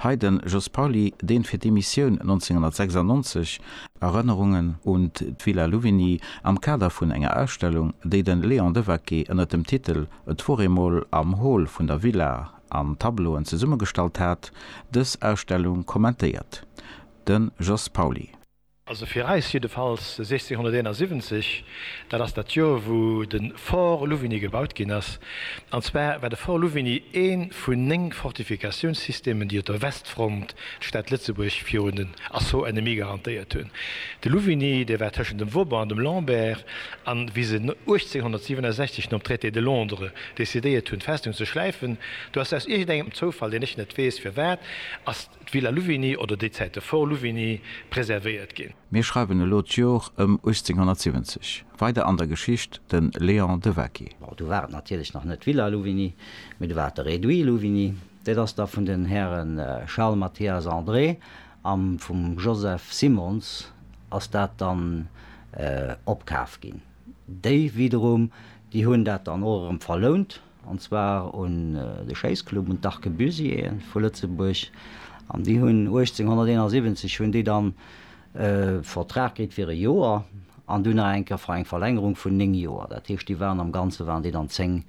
Hei den Jos Pauly, deen fir d'Emissioun 1996, Erënnerungen un d'Villa Louvigny am Kader vun enger Ausstellung, déi den Léon Devaquet ënnert dem Titel Et wor eemol am Hall vun der Villa an Tableauen zesummegestallt hat, dës Ausstellung kommentéiert. Den Jos Pauly. Also fir eis jiddefalls 1671, dat ass dat Joer wou de Fort Louvigny gebaut ginn ass. An zwar war de Fort Louvigny ee vun néng Fortifikatiounssystemen déi op der Westfront d'Stad Lëtzebuerg virun den Assaut ennemis garantéiert hunn. De Louvigny dee war tëschent dem Vauban an dem Lambert an wéi se 1867 nom Traité de Londres decidéiert hunn d'Festung ze schläifen do ass aus iergend engem Zoufall, deen ech net weess firwat, ass d'Villa Louvigny oder déi Zäit de Fort Louvigny preservéiert ginn. Mir schreiwen elo d'Jor ëm 1870. Weider an der Geschicht, de Léon de Waquy. Bon, du war et natierlech nach net d'Villa Louvigny, mee du war et de Réduit Louvigny. Dat ass da vun den Häre Charles Mathias André a vum Joseph Simons ass dat dann opkaf ginn. Déi widerum, déi hunn dat dann och erëm verlount. an zwar un de Schéissclub, un d'Arquebusiers vu Lëtzebuerg, an déi hunn 1871 hunn déi dann e Vertrag kritt fir e Joer an dunn nach eng Kéier fir eng Verlängerung vun néng Joer. Dat heescht, déi waren am Ganze waren déi dann zéng,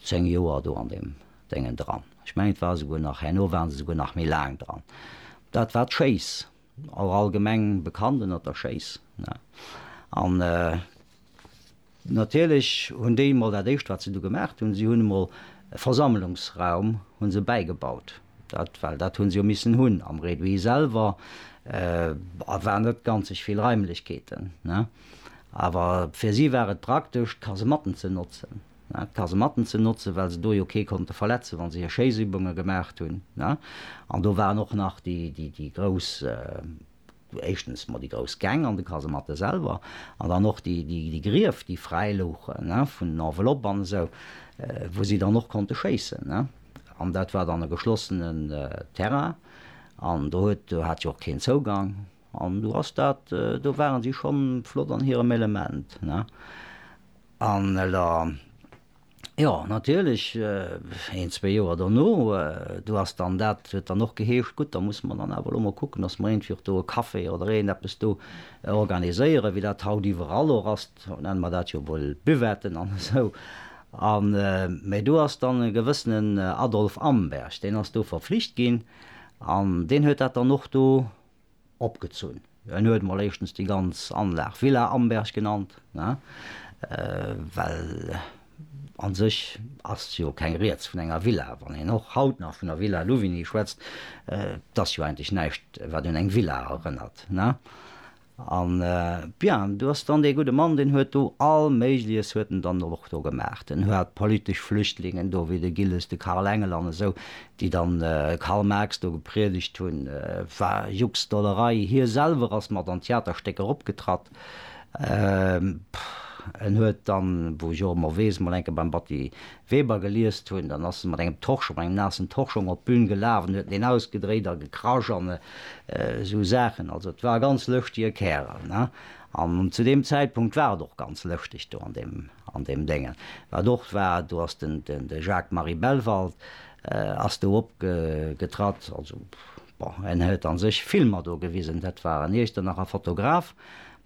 zéng Joer do an deem Déngen dran. Ech mengen, et war esouguer nach, herno waren se esouguer nach méi laang dran. Dat war d'Schéiss. Awer allgemeng bekannt ënnert der Schéiss. An natierlech hunn déi emol dat éischt wat se du gemaach hunn, si hunn emol e Versammlungsraum hu se bäigebaut. Dat well dat hu se jo missen hunn am Réduit selwer war net ganzeg vill Raimlechkeeten. Awer fir si war et praktesch ka se matten ze notzen. d'Kasematten ze notzen, well se do jo kee konnte verletzen, wa se hir Schéissübunge gemaacht hunn. An do waren och nach déi grouss, éischtens mol déi grouss Gäng an de Kasematte selwer an dann och déi Grief, déi fräi louchen vun Enveloppe an esou, wou si dann och konnte schéissen. An dat war dann e geschlossenen Terrain an do hat jo och keen Zougang. An do ass dat, do ware si schonn flott an hirem Element. An elo, jo, natierlech, een, zwee Joer dono, do ass dann dat, huet dann och geheescht, gutt, da musse mer dann awer elo mol kucken, dass mer iergendwéi och do e Café oder iergend eppes do organiséieren, wéi dat haut iwwerall och ass, haut nenne mer dat jo wuel Buvetten an esou. A mä do ass dann e gewëssenen Adolphe Amberg, deen ass do verflicht ginn an deen huet dat dann och do opgezunn. En huet emol éischtens déi ganz Anlag Villa Amberg genannt, well a sech ass jo keng Rieds vun enger Villa. Wann een och haut nach vun der Villa Louvigny schwätzt, et ass jo eigentlech näischt, wat un eng Villa erënnert. An, bien, do ass dann dee gudde Mann, deen huet do all Méigleches huet en dann och do gemaach. En hat politesch Flüchtlingen do, wéi de Gilles, de Karl Engel an esou, déi dann Karl Marx do gepriedegt hunn, war Juxdollerei, hie selwer ass mat an Theaterstéck eropgetratt, en huet dann, wou ech och ëmmer weess, mol enke beim Batty Weber geliest hunn, dann ass e mat engem Torschong, mat engem naassen Torschong op d'Bün gelaf an huet en ausgedréit a gekrasch an esou Saachen, also et war e ganz lëschtige Kärel. An zu deem Zäitpunkt war et och ganz lëschteg do an deem Déngen. Wat och war, do ass den Jacques-Marie Bellwald ass do opgetratt. Also, bon, en huet a sech Filmer do gewisen. Dat war en Iechternacher Fotograf,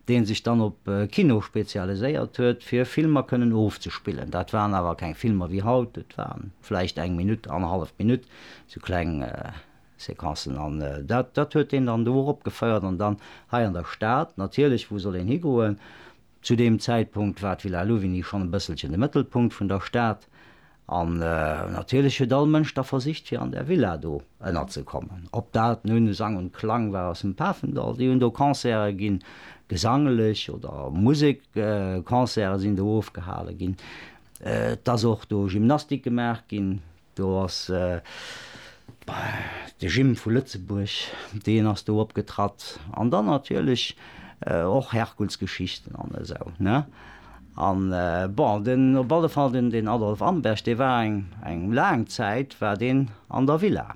dee sech dann op Kino spezialiséiert huet, fir Filmer kënnen ofzespillen. Dat waren awer keng Filmer wéi haut, et war vläicht eng Minutt, annerhallef Minutt, sou kleng. Séquencen an dat dat huet deen dann do och opgeféiert an dann hei an der Stad natierlech, wou soll een higoen? Zu deem Zäitpunkt war d'Villa Louvigny schonn e bësselchen de Mëttelpunkt vun der Stad an natierlech huet all Mënsch da versicht fir an där Villa do ënnerzekommen. Ob dat nun Sang und Klang war aus dem Pafendall, déi hunn do Concerte ginn, gesanglech oder Musekconcerte sinn do ofgehale ginn, et ass och do Gymnastik gemaach ginn, Do ass de Gym vu Lëtzebuerg, deen ass do opgetratt. An dann natierlech och Herkulsgeschichten an esou, ne? An bon, den, op alle Fall den Adolf Amberg, dee war eng laang Zäit war deen an der Villa.